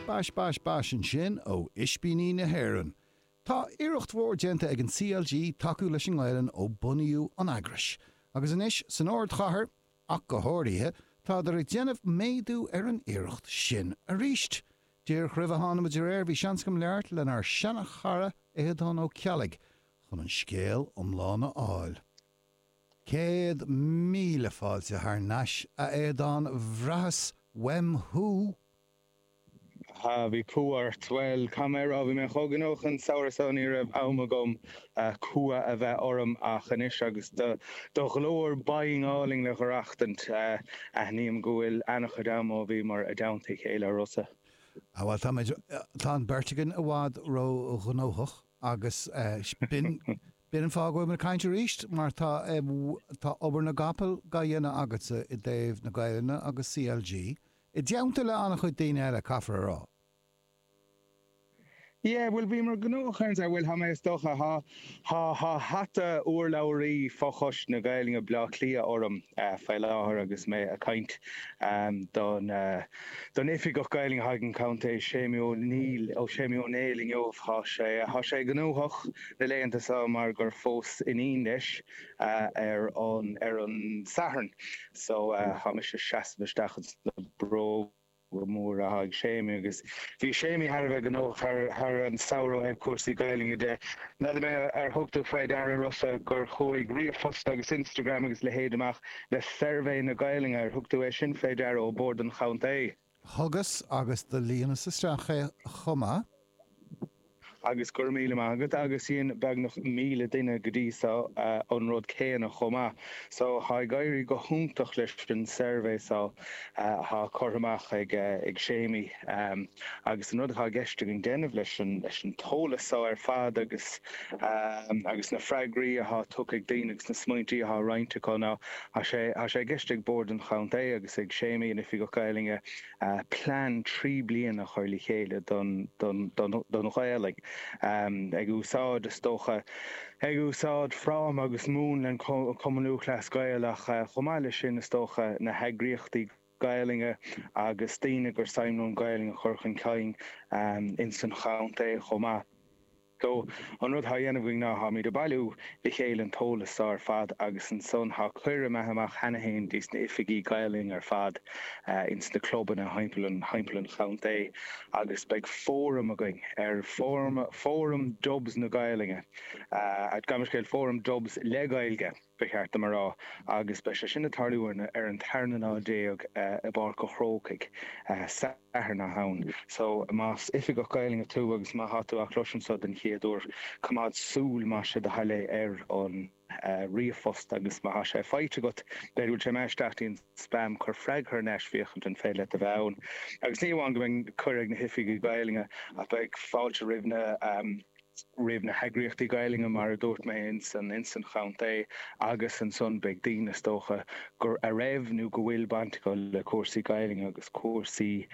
Bash bash bash ansin ó Ispíní na hÉireann. Tá iarracht mhór déanta ag an CLG tacú leis an nGaelainn ó bunaíodh an eagrais, agus anois san ardchathair ach go háirithe, táthar ag déanamh méadú ar an iarracht sin arís. Díreach roimh a thána muid ar aer, bhí seans agam labhairt lenár seana-chara Aodán Ó Ceallaigh chun an scéal iomlán a fháil. Céad míle fáilte thar n-ais, a Aodán, bhraitheas uaim thú! ha, bhí cumha ort! Bhuel, n'fheadar mé an raibh? Bhí mé chomh gnóthach an samhradh seo ní raibh am agam cumha a bheith orm ach anois agus do ghlór binn álainn le dh'aireachtaint, aithním go bhfuil ana-chuid am ó bhíomar i dteannta a chéile a Rossa. ha, bhuel, táimid, tá an beirt againn i bhfad ró-ghnóthach agus b'in, B'in an fáth go bhfuil mé ag caint arís, mar tá obair na gcapall dá dhéanamh agatsa i dtaobh na Gaelainne agus CLG, i dteannta le an-chuid daoine eile, caithfear a rá. Yeah, bhuel, bhíomar gnóthach cheana, a bhuel, tá mé, is dócha, tá, tá, tá hata urlabhraí fochoiste na Gaelainne Bhleá Cliath orm faoi láthair agus mé ag caint don, don Oifigeach Gaelainne atá ag an gContae Séimí Ó Néill, Séimí Ó Néill inniu, tá sé, tá sé gnóthach. na laethanta seo mar gur phós iníon leis ar an Satharn so tá mise ag seasamh isteach ins na bróga móra atá ag Séimí agus bhí Séimí thar a bheith gnóthach thar an samhradh ó thaobh cúrsaí Gaelainne de. N'fheadar mé ar thug tú faoi deara a Rossa gur chuaigh ríomhphost agus Instagram agus a leithéid amach le suirbhé na Gaelainne, ar thug tú é sin faoi deara, ó Bhord an Chontae? Thugas agus do líonas isteach é chomh maith. Agus go raibh míle maith agat. Agus dhein beagnach míle duine go dtí so an rud céanna chomh maith. So tá ag éirí go hiontach leis an suirbhé so atá curtha amach ag Séimí. Agus an rud atá i gceist againn déanamh leis an t-eolas so ar fad agus na freagraí atá tugtha ag daoine agus na smaointí atá roinnte acu ná Tá sé i gceist ag Bord an Chontae agus ag Séamaí, an Oifigeach Gaelainne, plean trí bliana a chur le chéile don Ghaelainn, ag úsáid, is dócha, ag úsáid fráma agus múnla an Chumainn Lúthchleas Gael ach chomh maith leis sin, is dócha, na heagraíochtaí Gaelainne agus daoine gur suim leo an Ghaelainn a chur chun cinn ins an chontae chomh maith. So, an rud thá a dhéanamh againn ná tháimid ag bailiú le chéile an t-eolas so ar fad agus ansan thá cuireadh imithe amach cheana fhéin dos na hoifigigh Gaelainne ar fad ins na clubanna mórthimpeall an chontae agus beidh fóram againn ar Fóram Dubs na Gaelainne, gabh mo leithscéal, Fóram Dubs le Gaeilge. ba cheart dom a rá, agus beidh sé sin ag tarlú ar an tarna lá déag i bPáirc an Chrócaigh, Satharn na Samhna. So, más oifigeach Gaelainne tú agus má tá tú á chloisint seo den chéad uair, coimeád súil, más sé do thoil é, ar an ríomhphost agus má tá sé faighte agat, b'fhéidir go bhfuil sé imithe isteach i dtí an spam, cuir freagra thar n-ais, féachaint an féidir leat a bheith ann. Agus ní amháin go mbeidh cuireadh ag na hoifigigh Gaelainne ach beidh fáilte roimh na. roimh na heagraíochtaí Gaelainne, mar a dúirt mé, insan insan chontae agus ansan beidh daoine, is dócha, gur a raibh nó go bhfuil baint acu le cúrsaí Gaelainne agus cúrsaí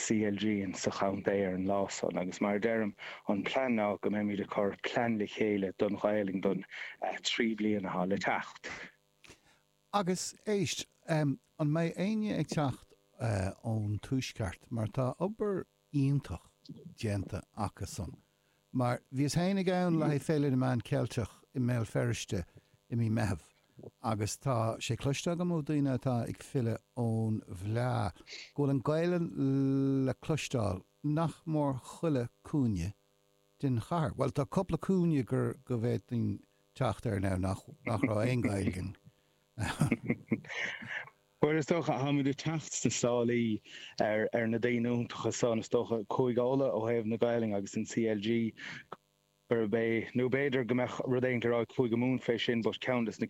CLG insan chontae ar an lá san. Agus mar a deirim, an plean ná go mbeimid ag cur plean le chéile don Ghaelainn don trí bliana atá le teacht. Agus, éist, an mbeidh éinne ag teacht ón Tuaisceart, mar tá obair iontach déanta acusan. Mar bhíos féin ann le haghaidh Féile na Meán Ceilteach i mBéal Feirste i mí Meitheamh agus tá sé cloiste agam ó daoine atá ag filleadh ón bhfleá go bhfuil an Gaolainn le cloisteáil nach mór chuile cúinne den chathair. Bhuel, tá cupla cúinne go bhféadfainn teacht air anois nach raibh aon Ghaeilge Bhuel, is dócha, táimid ag teacht sna sálaí ar na daoine iontacha san, is dócha, Cúige Uladh ó thaobh na Gaelainne agus an CLG gurb é, nó b'fhéidir go mbeadh rud le rá ag Cúige Mumhan fé sin, but ceann des na.